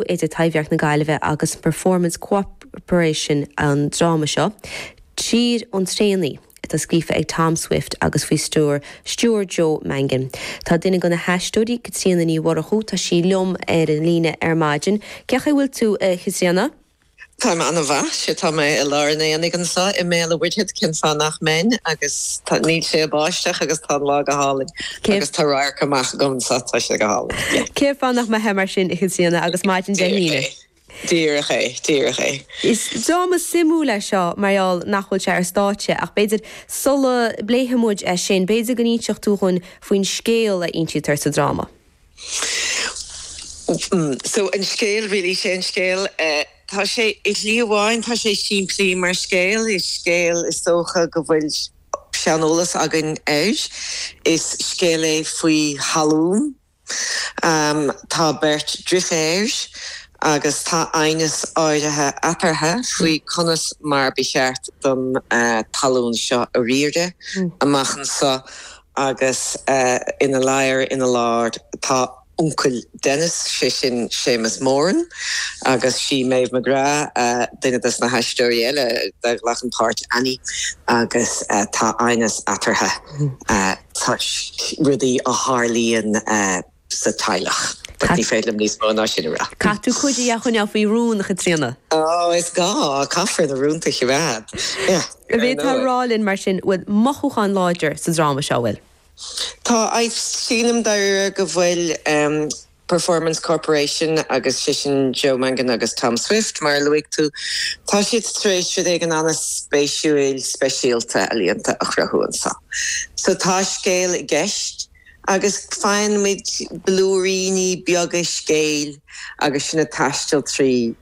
idir Taibhdhearc na Gaillimhe agus an Performance Co-operation an dráma seo, Tír an Traonaigh, atá scríofa ag Tom Swift agus faoi stiúir Joe Mangan. Tá duine de na haisteoirí, Caitríona Ní Mhurchú, tá sí liom ar an líne ar maidin. Cén chaoi a bhfuil tú, a Chaitríona? Táim an-mhaith. Sea, tá mé i lár an aonaigh anso i mBéal a Mhuirthead, cén fáth nach mbeinn agus tá, níl sé ag báisteach agus tá an lá go hálainn agus tá radharc amach agam anso, tá sé go hálainn. Yeah. Cén fáth nach mbeithfeá mar sin a Chaitríona agus maidin Dé hAoine? Díreach é. Díreach é. Is dráma suimiúil é seo mar gheall nach bhfuil sé ar stáitse ach b'fhéidir sula bpléifimid é sin, b'fhéidir go n-inseofá dhúinn faoin scéal a insítear sa dráma. So an scéal really, sé an scéal, tá sé i shlí amháin, tá sé simplí mar scéal, is scéal is dócha go bhfuil seaneolas againn air, is scéal é faoi thalún, tá beirt driféar agus tá aighneas áirithe eatarthu faoi conas mar ba cheart don talún seo a riaradh amach anso. agus ina lár ina lár tá uncail Dennis, sé sin Séamus Moran, agus sí Maeve McGrath duine de na haisteoirí eile a ghlacann páirt Annie agus tá aighneas eatarthu toisc rudaí a tharlaíonn. sa teaghlach. But ní féidir liom níos mó ná sin a rá. Caithfidh tú cuid de a choinneáil faoi rún, a Chaitríona. Ó, is gá, caithfear na rúnta a choimeád. Yeah. Ar ndóigh. Bhféadfá a rá linn, mar sin, bhfuil mothúchán láidir sa dráma seo, bhfuil? Tá, sílim dáiríre go bhfuil. Performance Corporation agus sé sin Joe Mangan agus Tom Swift, mar a luaigh tú, tá siad tar éis rud éigin ana-spéisiúil, speisialta, ealaíonta a chruthú anso. So tá scéal i gceist. agus faighimid blúiríní beaga scéil agus sinn ag taisteal trí,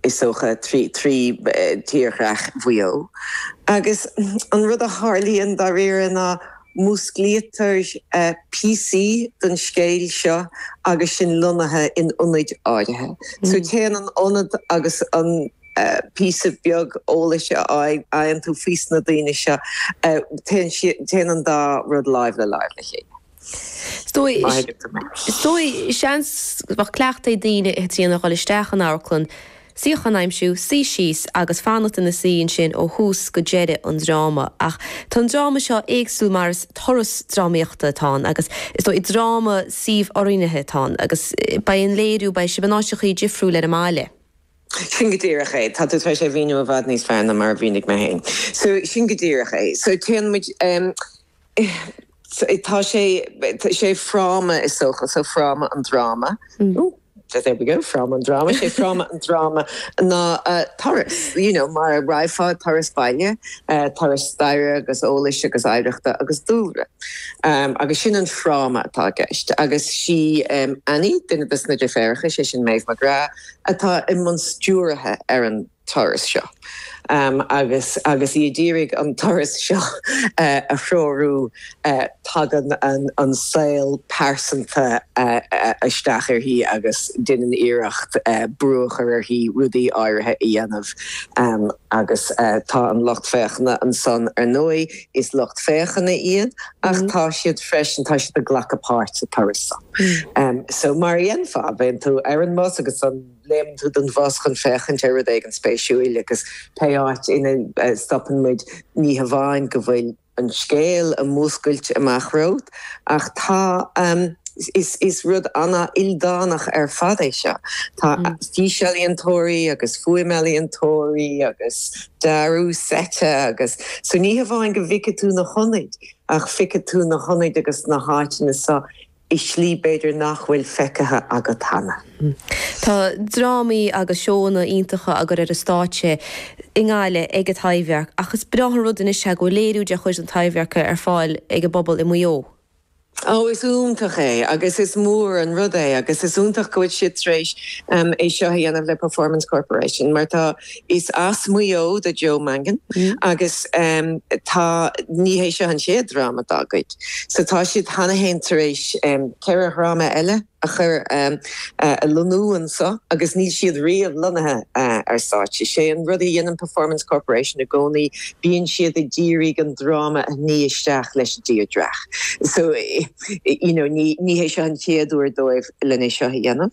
is dócha, trí thírdhreach Mhaigh Eo. Agus an rud a tharlaíonn dáiríre ná músclaítear píosaí den scéal seo agus sinn lonnaithe in ionaid áirithe. So téann an ionad agus an píosa beag eolais a fhaigheann tú fés na daoine seo, téann an dá rud láimh le láimh le chéile. Is dóigh, seans, go mbeadh cleachtadh ag daoine i dtreo a dhul isteach in amharclann, suíochán a aimsiú, suí síos agus fanacht ina suí ansin ó thús go deireadh an dráma. Ach tá an dráma seo éagsúil mar is turas drámaíochta atá ann agus, is dóigh, dráma suíomhoiriúnaithe atá ann agus beidh an léiriú, beidh sibh in áiteachaí difriúil ar an mbaile. Sin go díreach é. Tá tú tar éis é a mhíniú i bhfad níos fearr ná mar a mhínigh mé féin. So, sin go díreach é. So, téann muid, em, tá sé, sé fráma is dócha, so fráma an dráma. Ooh, there we go, fráma an dráma. Sé fráma an dráma ná uh, turas, you know, mar a raghfá ar turas baile, uh, turas staire agus eolais agus oidhreachta agus dúlra. Um, agus sin an fráma atá i gceist. Agus sí, em, Annie, duine de sna Deirféaracha, sé sin Méabh McGrath, atá i mbun stiúraithe ar an turas seo agus agus í ag d'iarraidh an turas seo a threorú, tagann an saol pearsanta isteach uirthi agus deineann iarracht brú a chur uirthi rudaí áirithe a dhéanamh agus tá an lucht féachana ansan, ar ndóigh is lucht féachana iad ach tá siad freisin, tá siad ag glacadh páirt sa turas san. So, mar a dhéanfá, bíonn tú ar an mbus agus léimeann tú den bhus chun féachaint ar rud éigin spéisiúil agus pé áit ina stopann muid, ní hamháin go bhfuil an scéal á mhúscailt amach romhat ach tá, is rud an-ildánach ar fad é seo, tá físealaíontóirí agus fuaimealaíontóirí agus dearadh seite agus. So ní hamháin go bhfeicfidh tú na hionaid, Ach feicfidh tú na hionaid agus na háiteanna so i slí b'fhéidir nach bhfuil feicthe agat cheana. Tá drámaí agus seóanna iontacha á gcur ar an stáitse i nGaillimh ag an Taibhdhearc ach is breá an rud anois é go bhfuil léiriú de chuid na Taibhdheirce ar fáil ag an bpobal i Maigh Eo. Ó, is iontach é agus is mór an rud é agus is iontach go bhfuil siad tar éis é seo a dhéanamh le Performance Corporation mar tá, Is as Maigh Eo do Joe Mangan agus tá, ní hé seo an chéad dráma dá gcuid, so tá siad cheana féin tar éis ceithre dhráma eile a chur, a lonnú anseo agus níl siad riamh lonnaithe ar stáitse. Sé an rud a dhéanann Performance Corporation i gcónaí, bíonn siad ag d'iarraidh an dráma a shní isteach leis an dtírdreach. So, you know, ní hé seo an chéad uair dóibh lena seo a dhéanamh.